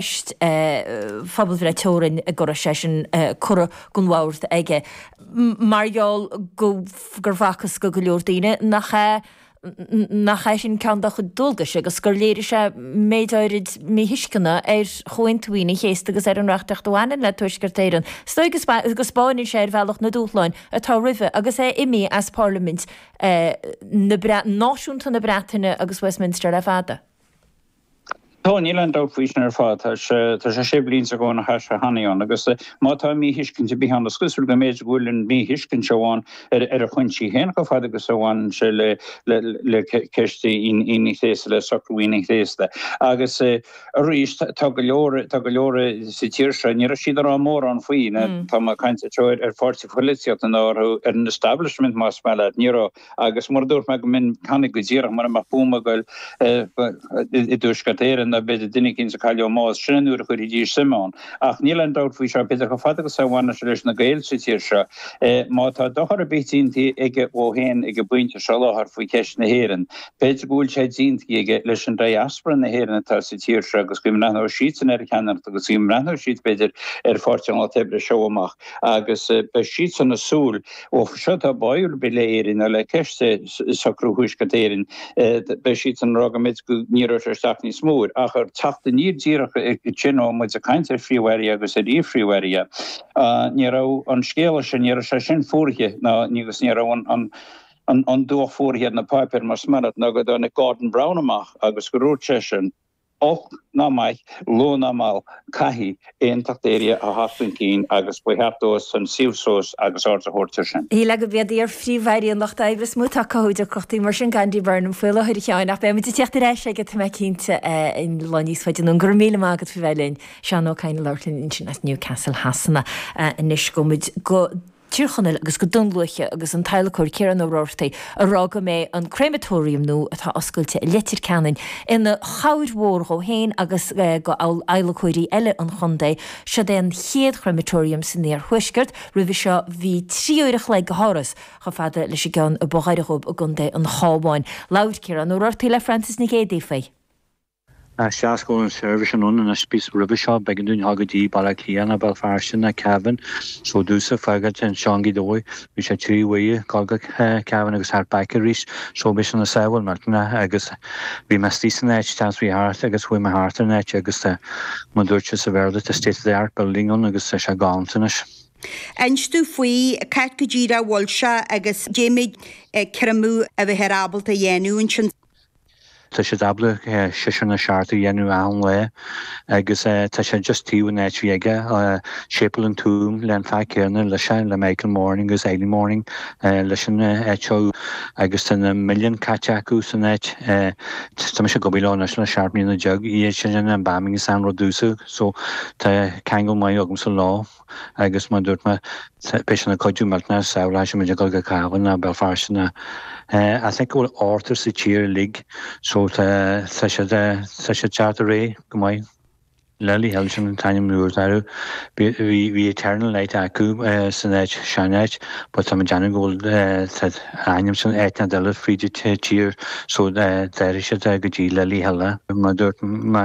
ceist phobalbhreith teorann go raibh sé sin curtha gan mhalairt aige mar gheall gur facthas go go leor daoine nach é sin ceann dá chuid dualgais agus gur léirigh sé méid áirid míthuisceana ar Chomhaontú Aoine an Chéasta agus ar an reachtaíocht a bhaineann le Tuaisceart Éireann. Is dóigh go spáineann sé ar bhealach na dúshláin atá roimhe agus é imí as Parlaimint náisiúnta na Breataine agus Westminster le fada. Tá, níl aon dabht faoi sin ar fad. Tá sé sé bliana ó shin agus má tá míthuiscint ar bith ann is cosúil go mb'fhéidir go bhfuil an míthuiscint seo ann ar a choinsias féin chomh fada agus a bhaineann sé le ceist Aoine Chéasta, le socrú Aoine Chéasta. Agus arís tá go leor, tá go leor sa tír seo, ní raibh siad ag rá mórán faoi, tá mé ag caint ar pháirtí polaitíochta nó ar an establishment más maith leat, ní raibh. Agus mar a dúirt mé go minic cheana go díreach mura mbeadh buama ag goil i dTuaisceart Éireann nó b'fhéidir duine éicint a cailleadh nó bás, sin an uair a chuirfidís suim ann. Ach níl aon dabht faoi seo, b'fhéidir, chomh fada agus a bhaineann sé leis na Gaeil sa tír seo, má tá dochar ar bith déanta aige dhó féin ag an bpointe seo i láthair faoi cheist na hÉireann, b'fhéidir go bhfuil sé déanta aige leis an diaspora na hÉireann atá sa tír seo agus go mbreathnóidh siadsan ar a cheannaireacht agus go mbreathnóidh siad, b'fhéidir, ar Pháirtí an Lucht Oibre as seo amach agus beidh siadsan ag súil Ó seo tá báúil le Éirinn le ceist socrú Thuaisceart Éireann. Beidh siadsan ag rá go mbeidh go ní raibh sé isteach níos mó ar ach ar teachtaí anois díreach ó tá muid a caint ar phríomh-aire agus ar iar-phríomh-aire. Ní raibh an scéala sin ní raibh sé sin fuaraithe ná ní agus ní raibh an an an dúch fuaraithe ar na páipéir mar is maith leat nó go dtáinig Gordon Brown amach agus go dúirt seisean Olc ná maith, luath ná mall, caithfidh aontacht Éireann a theacht chun cinn agus ba cheart dóibh san suí suas agus aird a thabhairt ar sin. B'fhéidir gurb iad iar-phríomh-airí an Lucht Oibre is mó atá ag cothú deacrachtaí mar sin go Andy Burnham faoi láthair a Sheáin, ach beidh muid ag teacht ar ais aige tá mé cinnte sin lá níos faide anonn. Go raibh míle maith agat faoi bheith linn. Seán Ó Cadhain ag labhairt linn ansin as Newcastle Shasana anois. Gabhaimid go. Tír Chonaill agus go Dún Lúiche agus an t-adhlacóir Ciarán Ó Roartaigh a rá go mbeidh an créamatóiriam nua atá oscailte i Leitir Ceanainn ina chabhair mhór dhó féin agus go adhlacóirí eile an chontae. Siod é an chéad chréamatóiriam san iarthuaisceart. Roimhe seo bhí trí uair a chloig de thuras chomh fada leis an gceann is gaire dóibh i gContae an Chábháin. Labhair Ciarán Ó Roartaigh le Frances Nic Géidigh faoi. Tá sé ag gabháil an seirbhís iontach anois roimhe seo, b'éigean dúinn dhul go dtí Baile Átha Cliath ná Béal Feirste ná Cavan, so d'úsáid teaghlaigh an ceann is gaire dóibh. Bhí sé trí uair dhul go Cavan agus thart back arís, so bhí sin an sábháil milteanna agus bhí mé istigh san áit, seans bhí thart agus chuaigh mé thart ar an áit agus tá mar dúirt siad sa Bhéarla tá state of the art building ann agus tá sé galánta anois. Inis dúinn faoi, cá háit go díreach a bhfuil sé agus cá mhéad créamadh a bheifear ábalta a dhéanamh ansin. Tá siad ábalta seisear ná seacht a dhéanamh achan lá agus tá sé just taobh an áit bhí aige, Séipéal an Túim, leis an fear céanna leis seo, le Michael Morning agus Eilidh Morning leis an áit seo agus tá na milliúin caite acu san áit. Tá mise ag obair leo anois le seacht mbliana déag, iad sin embalm agus an rud seo so tá ceangal maith agamsa leo. agus mar a dúirt mé, beidh sé ina chuidiú millteanach sábhálfaidh sé muid ag dul go Cavan ná Belfast ná I think go bhfuil ceathar sa tír uilig so tá tá siad tá siad cearta réidh go maith. Lily Hill sin an t-ainm nua, d'athraigh. Bhí bhí bhí Eternal Light acu san áit sean áit but tá mé déanamh go bhfuil tá an ainm sin áit inteacht eile fríd an tír so d'athraigh siad go dtí Lily Hill. Mar a dúirt mé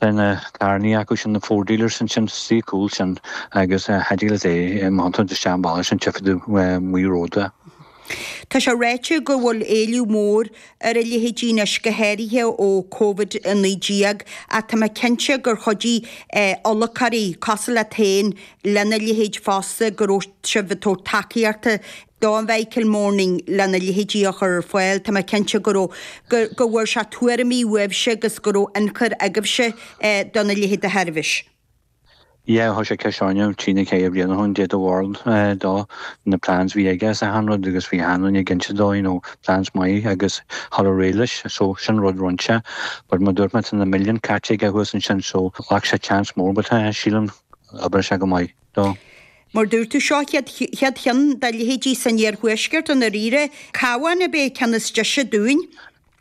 Tá na tairní acu sin, na Ford dealers ansin sa suíomh cúil sin agus cha deal is é a mbainfeadh isteach an bealach sin tchífidh tú Maigh Róda. Tá sé ráite go bhfuil éileamh mór ar a leithéidí anois, go háirithe ó Covid-19, ach tá mé cinnte gur chuidigh adhlacóirí, cosúil leat féin, lena leithéid fosta, go raibh sibh ag tabhairt tacaíochta do Mhichael Morning lena leithéidí a chur ar fáil. Tá mé cinnte go raibh, go, go bhfuair sé tuairimí uaibhse agus go raibh ionchur agaibhse do na leithéid de sheirbhís. Yeah, chuir sé ceist orainne trí ná ceithre bliana ó shin, caidé do bharúil do na plans bhí aige is achan rud agus bhí achan duine ag inse dó you know plans maith agus a ghabháil ar aghaidh leis so sin rud a rinn sé but mar dúirt mé tá na milliúin caite aige thuas ansin so ghlac sé chance mór but sílim oibreoidh sé go maith. dó. Mar dúirt tú, seo chéad cheann dá leithéidí san iarthuaisceart i ndáiríre. Cabhán ab é ceann is deise dúinn?